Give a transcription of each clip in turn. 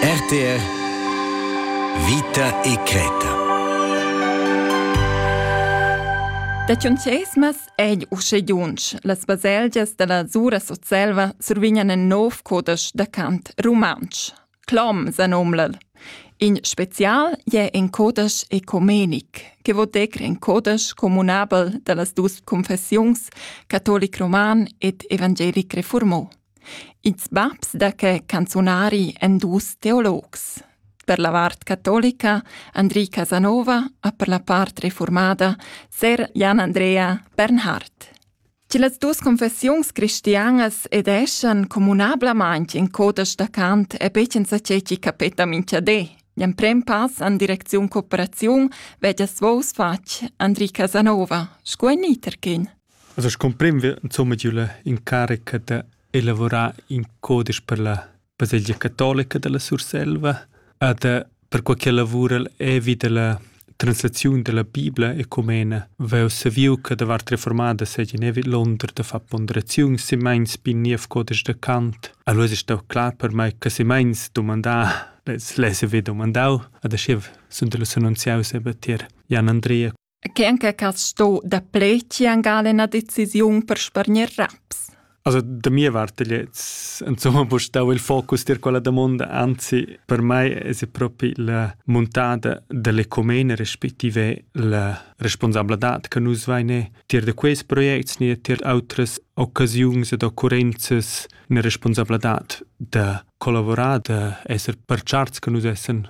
RTR Vita e creta Da Tschunchesmas è uschedunsch. Las baselgias da la Sura Sutselva survignan in nov codesch da cant rumantsch. Clom sa nomlal. In spezial è in codesch ecumenic che vò decr in codesch comunabel da las dus confessiuns catolic roman ed evangelic reformò. Ils babs da que canzunari èn dus teologs. Per la vart catolica Andri Casanova e per la part reformada ser Jan Andrea Bernhard. Che las dus confessiuns cristianas edeschan communablamain in codesch da cant è be senza che chi capeta minchadé. L'emprem pass en direcziun cooperaziun veggia svous fatg Andri Casanova, sco in iterkin. Also scumprem wir insumma giu la incarica da elavurar in codisch per la baselgia catolica dalla Surselva ed per quei che lavura'l evi dalla translaziun dalla Bibla ecumena vegl saviu che da vart reformada seigien evi l'onder da far ponderaziuns simeins bi niev codisch da Kant. Allora è stau clar per mai che simeins domandar les les vi domandau ad aschiv sun da los annunziaus eben tier Jan Andrea Che anche cas sto da pleci angal ina decisiun per spargner raps? Also da mia parte jetzt insomma wo stau il focus dir quella domanda anzi per me è proprio la montada dell'ecomene respektive la responsabilità che nus veine tier de quest projects ni tier autres occasiuns ed occurrenzas eine responsabilità da collaborare da esser per charts che nus essen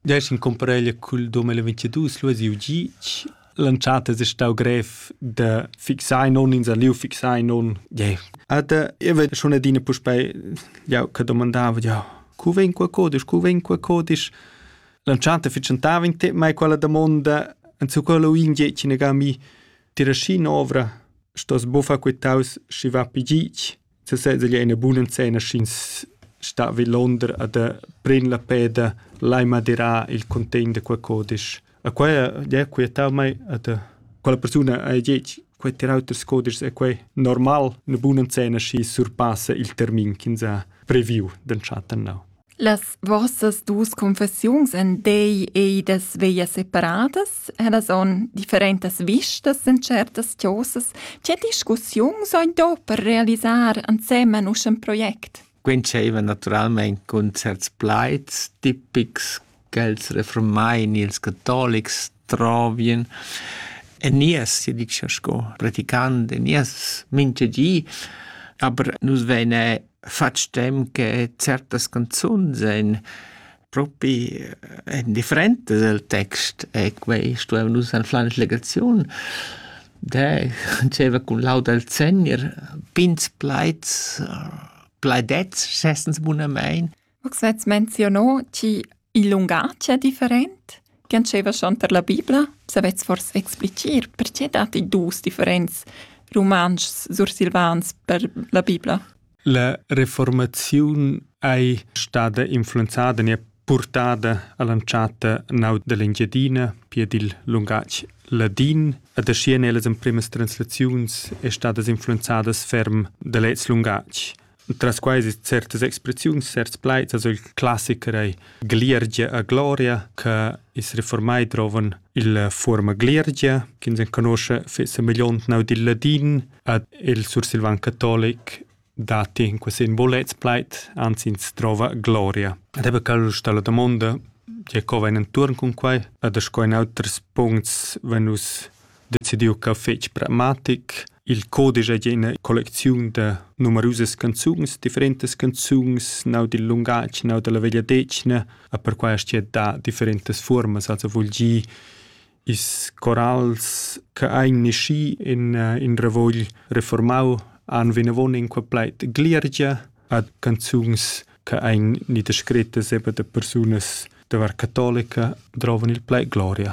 Desch in cumpareglia cul 2022 lu siu gitg. L'entschatta es stau grev da fixar non ins ha liu fixar non. Yeah. Ed io vez schon adina puspei jau che domandava jau cu vegn qua codisch, cu vegn qua codisch. L'entschatta fitschentava in temp mai quella damonda en su quello in gitg in a mi. Tira schi novra, stos bufa quitaus schi va pi gitg. sesez egl è ina buna enzenna sch'ins sta vi Londra ed pren la peda lai madirar il contegn da quei codisch. E quei è quietau mei ed quella persuna ha detg quei terauters codischs è quei normal, una buna enzenna schi surpassa il termin ch'ins ha previu d'entschatta nau. Las vossas dus confessiuns en dei ei das veglia separadas, ellas on differentas vistas en certas chosas. Tge discussiuns ein do per realisar ansemen usch in project? Quei entscheiva naturalmein cun certs plaids tipics ch'els refurmain ils catolics trovien en nies, sia dicia sco praticant en nies mintga di, aber nus veine fatg temps che certas canzuns ein propi en differentas el text e quei stuevan nus anflar in legaziun. De diceva cun laud al Segner, pins plaids, plaidets, schessens bunamein. Max vets menziono chi il lungatg è different che antscheva schon per la Bibla. Savets fors explicir perché datti dus differents rumantschs sursilvans per la Bibla? La reformaziun ei stada influenzada e purtada all'anchata nau dell'Engiadina per il lungatg ladin ed ascien ellas emprimas translaziuns è stadas influenzadas ferm dall'ez lungatg. Tras quai es certas expressiuns, certs plaids, also il classiker ei Gliergia a gloria, che is reformai drovan il forma Gliergia, che ins conosce fissa milliontnau dil ladin, ad il sursilvan catolic dati in quasi in bolets plait, anzi ins trova gloria. Ed ebbe cal sta la domanda, je co vain enturn cun quai, ad sco in auters puncts venus decidiu ch'el fetg pragmatic. Il codisch ei ina collecziun da numerusas canzuns, differentas canzuns, nau dil lungatg, nau dalla vegliadetgna, e perquai aschia da differentas fuormas, also vul gir is corals che ein nasci in, in ravugl reformau han vinavon in qua plait gliergia ad canzuns che ein ni descrettas eben da persunas da var catolica drovan il plait gloria.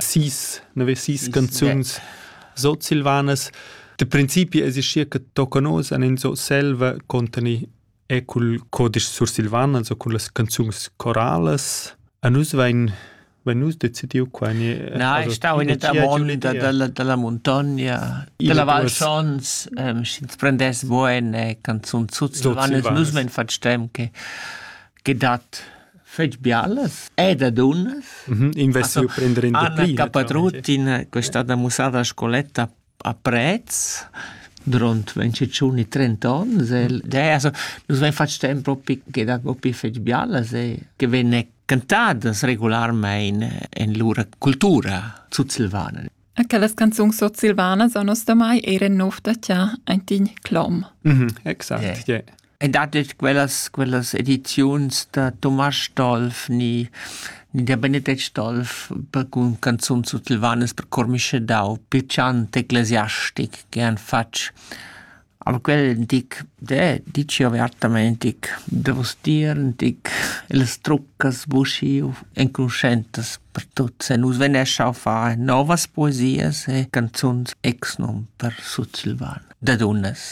Sis, nove sis canzuns sutsilvanas. Da principi es schi che tocca nos an in Surselva contani e cul codisch sursilvan, also cun las canzuns coralas. A nus vain vain nus decidiu qua in Na, ich stau in der monda dalla dalla montagna, della Val Schons, sch'ins prendess bo eine Canzun sutsilvana, nus men fatsch temp che che dat fetg bialas ed a dunnas. Mm -hmm. Investiu prender in Anna Capatrut in questa da musada scoletta a Prez durant 25 30 onns e det, also nus vein fatg temp propi che da propi fetg bialas e che venne cantadas regularmente en lura cultura sutsilvana. Aquelas canzuns sutsilvanas a nos da mai eran nov da tia, ein tin clom. Mm -hmm, exact, yeah. yeah. E dat detg quellas, quellas ediziuns da Tomasz Dolf ni, ni der Benedikt Dolf per cun canzun sutsilvanas per cor miscedau, piacant, ecclesiastic, che han fatg. Aber quel dic, de, dici avertament, dic, de vos dir, dic, les truccas buschiu enconuschentas per tuts e nus venescia a fare novas poesias e canzuns exnum per sutsilvan, da dunas.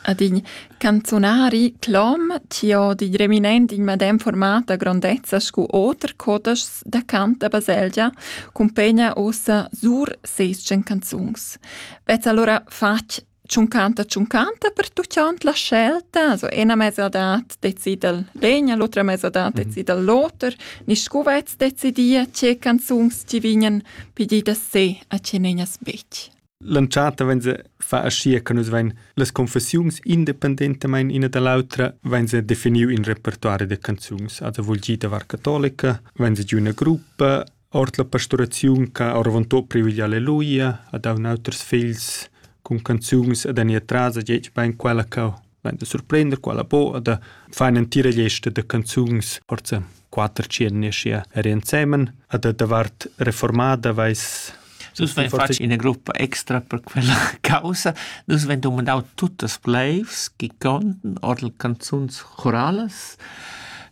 ad in canzunari clom chi ho di reminent in madem format da grondezza scu oter codeschs da cant da baselgia cumpegna ussa sur seis tschen canzuns. Vezz allura fatg tschuncanta tschuncanta per tuchant la scelta, so ena mesadat decidel legna, l'otra mesadat mhm. decidel l'oter, niscu vezz decidia ce canzuns ci vignan pididas se a ce negnas bec. L'entschatta vegn se fa aschia che nus vein las confessiuns independentamain ina da l'autra vein se definiu in repertori da canzuns. Also vul gir davar catolica, vein se giu ina gruppa ord la pastoraziun che ha oravontut privilegì alleluia, ha dau auters figls cun canzuns ed han ir tras a gec bein quella che Vain da surprender quella boa da far ün'entira lista da canzuns forza quatter tschiernisch ja er insemen a da davart reformada vais Dus vegn fatg ina gruppa extra per quella causa. Dus vegn domandau tuttas bleivs chi conten ord canzuns choralas.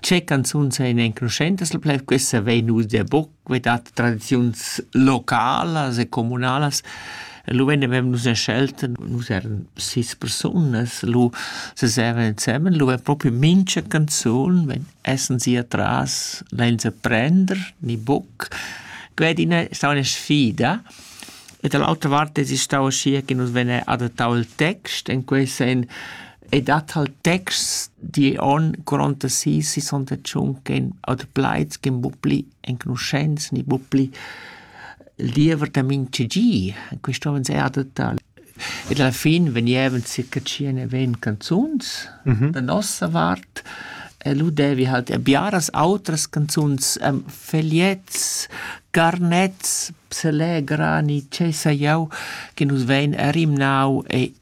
Ce canzuns ein enconuschentas, la pleiv questa vei nus der buc quità da tradiziuns localas e communalas. Lu vegnevan nus en schelta, nus eran sis persunas, lu sesevan ensemen, lu è propi mincha canzun, wenn essen sie atras, lein se prender, ni buc. Quei din è stau una sfida. E dall'altra vart es stau aschia che nus vegn adattau il text, in quei sen E dat halt texts di on gronda si sisonda tschun ch'en adplaids ch'en buc pli enconuschents ni buc pli il diever da mintga gi. Quist hom ens adatà. Ed alla fin vegnevan circa tschien e ventg canzuns da nossa vart e lu devi halt er biaras outras canzuns, ehm, fegliets, garnets, pselegra ni tgei sai jau, che nus vein er rimnau e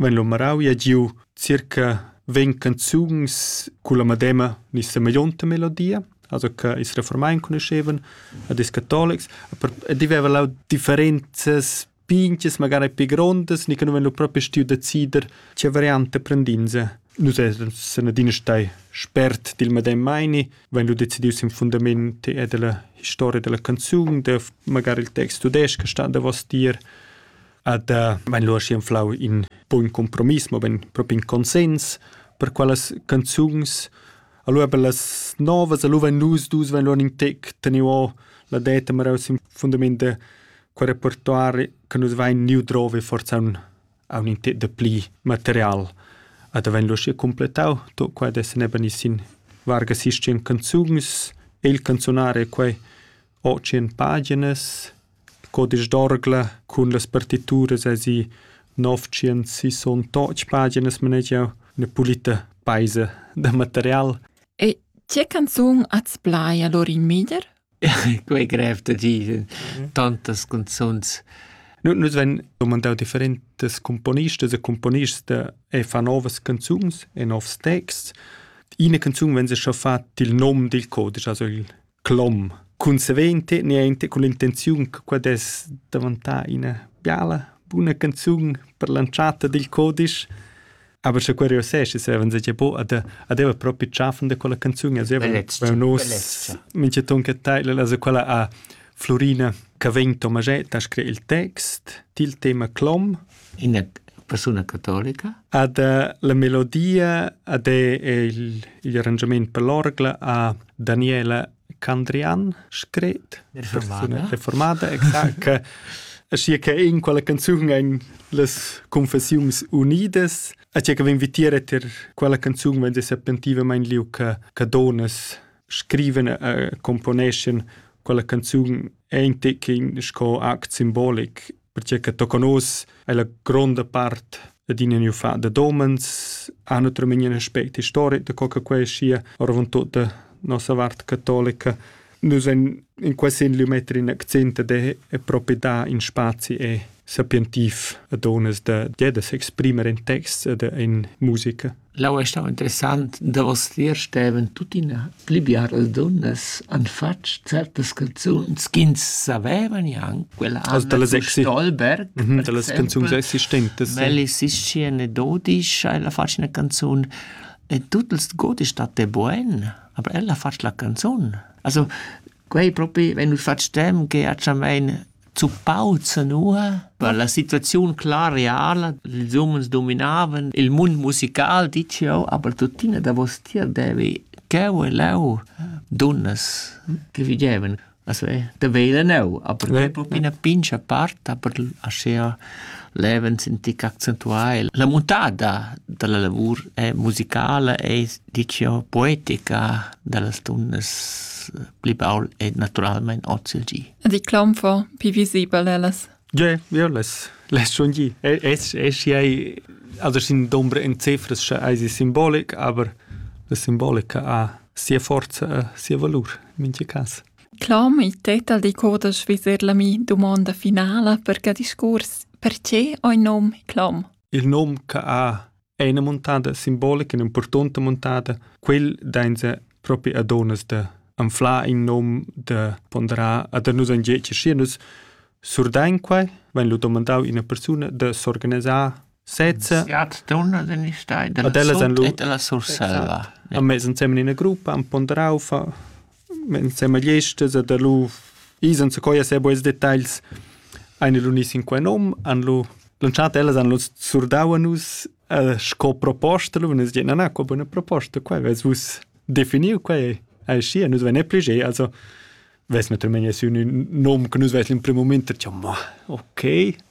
Vegn lu marau e giu circa vegn canzuns culla medema ni semeglionta melodia, also che ils reformai enconuschevan, ed ils catolics, per- ed i veva lau differenzas pintgas, magari pli grondas, ni che nus vein lu propi stiu decider tgei varianta prendinse. Nus essan san adina stai spert dil medem meini, vein lu decidius sin fundament era dalla historia dalla canzun, da magari il text tudestg che stat davos tier, ad vain lura schi anflau in bun compromiss, mo ben propi in consens per quellas canzuns. Allora per las novas, allora vain nus dus vain lura in tec teniu la deta maraus in fundament de quel repertoire che nus vain niu drove forza un a un intet de pli material. Ad vain lura completau, to qua des neben sin varga sistem canzuns, e il canzonare quai ho tschient paginas, codisch d'orgla cun las partituras esi novtschient sissontotg paginas manegiau, üna pulita paisa da material. E tge canzun ats plai allora in Mieder? Quei grev da dir, tantas canzuns. Nus vegn domandau differentas componistas e componists e fa novas canzuns e novs texts. Ina canzun vegn scha fat il nom dil codisch, also il clom consequente niente con l'intenziun che quai dess davantar ina biala buna canzun per l'entschatta dil codisch aber sche quei reusseschi seven se po ad adeva propi tschaffen da quella canzun also nos mincheton che teil also quella a Florina che vegn Tomaschetta a screi il text til tema clom Ina persuna catolica? Ad la melodia ad è il, il arrangiament per l'orgla a Daniela Candrian scret reformada, reformada exact, che Sia che in quella canzun ein las confessiuns unidas, a tia che vin vitiere ter quella canzun vende serpentivamente liu che che donas scriven e componeschen quella canzun ente che in sco act simbolic perche che tocca nus è la gronda part adina new fa da domens ha notre min un aspect historic da co che quei sia orvon tutta nossa vart cattolica nus in in quasi in lumetri in accent de e proprio da in spazi e sapientiv a donas da de da s'exprimer in texts e de in musica L'aua è stà interessant. Davostier stevan tuttina pli biaras dunnas han fatg certas canzuns ch'ins saveva gnanc. Quella Also Anna dall'es von exi- Stolberg, Mhm, per dallas exemple. canzuns existentes. Well es ischi eine Dodisch, ella fatg una canzun e tut ils Godisch dat e buen, aber ella fatg la canzun. Also quei propi, wenn du fatg dem, ge a Chamein Zuppau zanua per la situaziun clar reala. Ils umens dominavan il mund musical, ditg jau, aber tuttina davostier devi cheu e leu dunnas che vigevan. Also da vegl enneu, aber quei propi ina pincha part, aber aschia levens in tic accentuai. La muntada dalla lavur è musicala e ditg jau poetica dallas dunnas pli baul e naturalmein oz il gi. Di clomfo pi visibel ellas. Ja, ja less less schon gi. Es es ei also sin dombra in cifras scha eis simbolic, aber la simbolica ha sia forza e sia valur in mincha cas. Clom i tetal di corda sviser la mi domanda finala per ca discurs. Perche oi nom clom? Il nom ca ha è ina muntada simbolica, ina impurtonta muntada. Quel dainsa propi a donas da anflar in nom da ponderar a da nus angeci schi nus surdain quai, wenn lu domandau ina persuna da s'organisar sezza. Ja, dona den ich da. Ad ella sen lu. Et alla surselva. A mezz ensemen in ina gruppa, am ponderau fa in semagliest esa da lu ais enzacoi a sé buns detagls ein lu gnüts in quei nom, han lu lantschat ellas han lu surdau a nus eh, sco proposta, lu e nus dicen na, na, qua buna proposta, quai vess vus definiu, quai ei schi, nus vein pli ge, also ves naturalmein sü ün nom che nus ves in primo moment, diciamo, okay,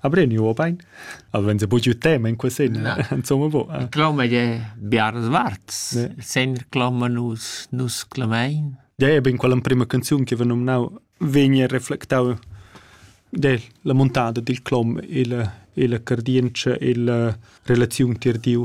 Abreniu obein? Wenn se bugiu tema in quesin. Insomma, bo. Eh. Cloma je Biars Warz. Sen cloma nus nus clamein. Ja, e bin quella prima canzun che va nominau vegni reflectau de la montada dil clom il il cardience il relaziun tir diu